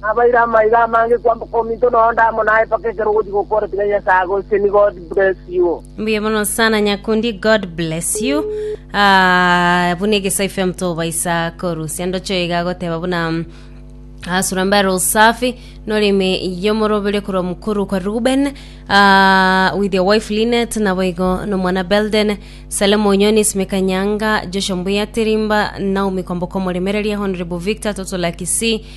Nabaire amaiga amange kwamboka ominto na onde amo naye mpaka ekero ogochia gokora tiga Nyasaye agoseseni God bless you. Mbuya mono sana nyakundi god bless you Ah, buna egeso fm tobaisa korusia ndocho iga agoteba buna mm, ah, surambare usafi norime yomorobere korwa mukuru kwa ruben ah, with your wife linet nabo igo nomwana belden salem onyoni simeka nyanga joshua mbuya tirimba naomi kwamboka omoremereria honorable victor totola kisii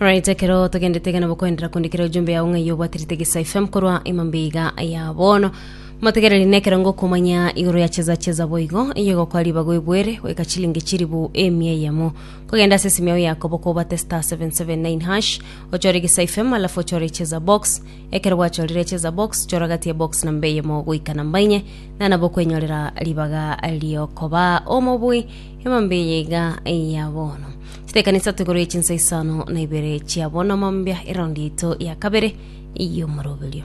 Alright, ekero togendete iga nabo koenderera kundikira ojumbe yao ng'ai obwate ritege sa FM korwa emambe iga ya bono motegereri nekero ngokumanya igoro ya cheza cheza boigo iye gokwa ribago ebwere goika chilingi chiribu emia eyemo kogenda ase esimi yao yakobo kobate star 779 hash ochore gisa FM alafu ochore cheza box Ekero gwachorire cheza box, chora gati ebox na mbe eyemo goika na mba inye, na nabo kwenyorera ribaga riokoba omobui emambe eye iga eya bono. Chitekani isato igoro ye chinsa isano na ibere chia bono mambia eraundi yaito ya kabere y'omoroberio.